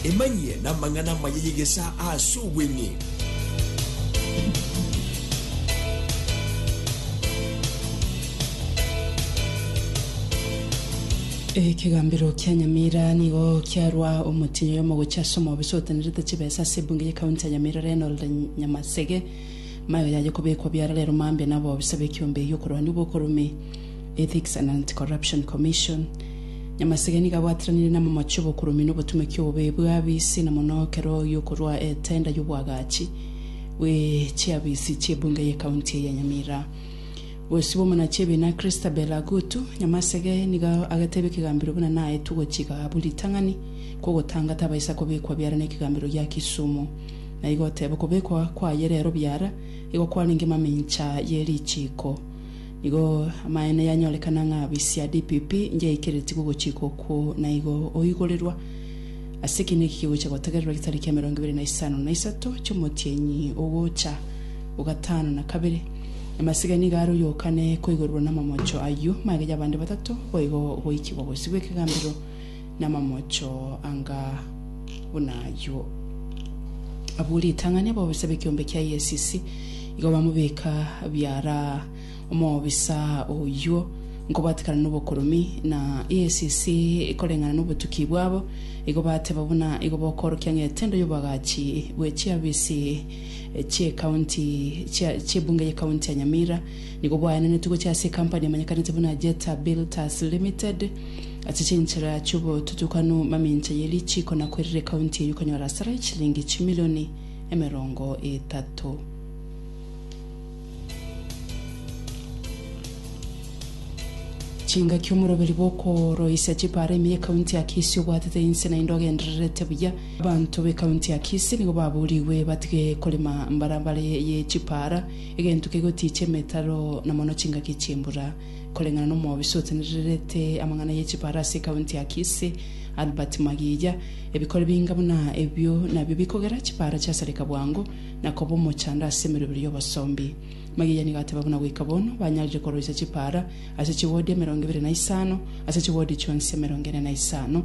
Emanyie namang'ana amaya y'egesaa aase obweng'e. Ekegambero kia Nyamira nigo kiarwa omotienyi oyomo gochia ase omobisa otenerete chibesa ase ebunge ye county ya Nyamira Reynold Nyamasege. Mayo yaye kobekwa biararero mambia nabobisa bekiombe egi'okorwania obwokorumi. Ethics and Anti-Corruption Commission, Nyamasege nigo abwatiranire namomoche obokuromi na obotumekia obobe bw'abisi na mono ekero oyio okorwa etenda y'obwagachi bwe chiabisi chi'ebunge ye county eye ya Nyamira. Bosibwa omona chi'ebiina Christabel Agutu, Nyamasege nigo agetebia ekegambero buna naetwe gochika abwo ritang'ani kw'ogotanga tabaisa kobekwa biara n'ekegambero gia Kisumu. Naigo oteba okobekwa kwaye rero biara igo kwarenge mamincha ye richiiko. Igo amaene yanyorekana ng'a bisia DPP ngiaikeretigwe ogochika okwo na igo oigorerwa ase ekiina eki kigocha gotegererwa getariki ya emerongo ebere na isano na isato chi'omotienyi ogocha o gatano na kabere. Amasiga nigo aroyokane koigorerwa na amamocho ayio, magecho abande batato boigo goikigwa bosio bw'ekegambero namamocho anga buna ayio. Abwo ritang'ani abobisa b'ekiombe kia EACC igo bamobeka biara omobisa oyio nkobwatekana nobokoromi, na EACC koreng'ana nobotuki bwabo igo bateba buna igo bokorokia ng'etendo y'oboagachi bwe chiafisi chi'ekaunti chia chi'ebunge y'ekaunti ya Nyamira nigo bwaenanetwe gochia ase ekampani emanyekanete buna Jetta Builders Limited, Ase chinchera chi'obotutukanu, mamincha ye richiiko na kwerire ekaunti eyio ekonyora asara ye chilingi chimilioni emerongo etato. Chingaki omoroberi bw'okoroisia chipaara ime y'ekaunti ya Kisii obwatete inse naende ogendererete buya. Abanto b'ekaunti ya Kisii nigo babuurigwe batige korema mbarabara eye ye chipaara, egento kegotiichia emetaro na mono chingaki chi'embura. koreng'ana n'omobisa otenererete amang'ana ye chibare ase ekaunti ya Kisii, Albert Magiya, Ebikori binga buna ebio nabio bikogera chibare chiasareka bwango na koba omochando ase emerobero y'obosombi. Magiya nigo ateba buna goika bono banyarire koroisia chibare ase chiwodi emerongo ebere na isano ase chiwodi chionsi emerongo ene na isano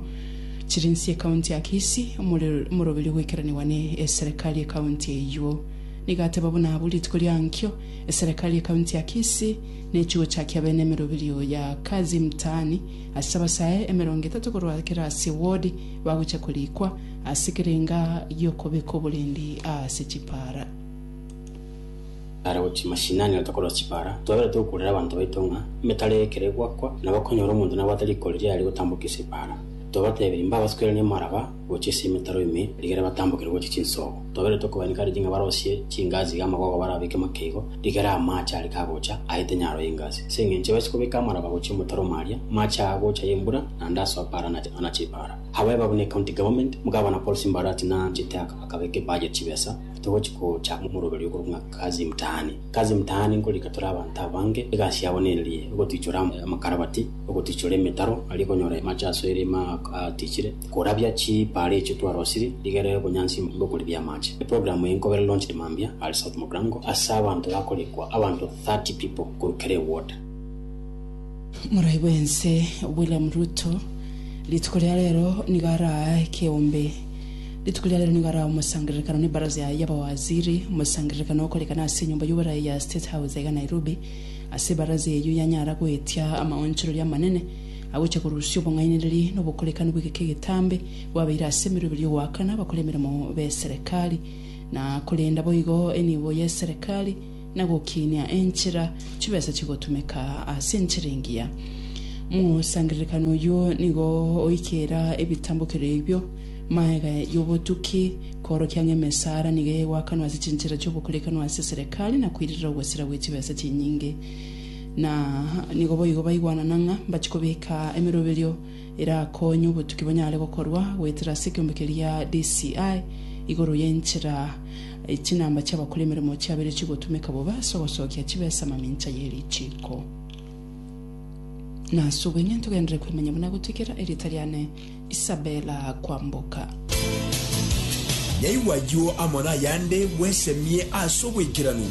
chiri nse y'ekaunti ya Kisii. Omoroberio goikeranigwa ne eserekari y'ekaunti eyio nigo ateba buna abwo rituko riankio eserekari y'ekaunti ya Kisii Ne chigochakia bene emeroberio ya Kazi Mtaani ase abasae emerongo etato korwa kera ase ward bagocha korikwa ase kerenga giokobeka oborendi aase chipara. Ara gochia mashinani na tokorora chipara, twabera togokurera abanto baito ng'a emetaro eye ekero egwakwa, nabo okonyora omonto nabwate riko riria aria gotambokia ase ipara. Twabatebire, Mbabasukere nemaraba. gochia ase emetaro ime, rigere batambokere gochia chinsoogo. Twaberetwe kobaineka riri ng'a barosie chingaasi iga amagogo barabeke make igo, rigere amaache are kagocha aete nyaro y'engaasi. Ase engencho base kobeka amaraba gochia omotaro o maaria, maache aa gocha y'embura, naende ase opaara na na chipaara. Abwo eba buna ecounty government, Mugavana Paul Simba Arati na anchete aka akabeka ebudget chibesa, togochi gocha omoroberio okorwa ng'a Kazi Mtaani. Kazi Mtaani nkorika tore abanto abange, egasi yabo nererie, ogotwichora amakarabaati, ogotwichora emetaro, aria okonyora amache asoire ime aa aa atichire, Korabia chipaara echi twarosiri, rigera obonyansi bw'okoribia amache. Eprogramu eye nkobere launched mambia are South Mogrango ase abanto bakorikwa abanto 30 people korwa kera ewater. Morai bw'ense William Ruto rituko ria rero nigo araa ekeombe. Rituko ria rero nigo araa omosangererekano ne baraza yaye y'abawaziri, omosangererekano okorekana ase enyomba y'oboraia ya State House aiga Nairobi, ase baraza eyio yanyara goetia amaonchoreria amanene, Agocha korusia obong'ainereria na obokorekani bw'egeka egetambe bwabeire ase emeroberio y'ogoakana abakora emeremo b'eserekari, na korenda boigo enibo y'eserekari, na gokinia enchera chibesa chigotumeka ase enchera engiya. Mosangererekano oyio nigo oikeera ebitambokero ebio maega y'obotuki, koorokia ng'a emesara nigo egoakanwa ase chinchera chi'obokorekano ase eserekari na koirerera ogosira gwe chibesa chinyinge. Na nigo boigo baigwanana ng'a mbachie kobeka emeroberio erakonye obotuki bonyare gokorwa goetera ase ekeombe keria DCI igoro y'enchera e chinamba chi'abakora emeremo chiabeire chigotumeka bobe ase ogosokia chibesa amamincha ye richiiko. Na ase obong'aini togenderere koimanya buna gotuikera erieta riane Isabella Kwamboka. Nyaigwa ayio amo nayande bwesemie ase obwaikeranu.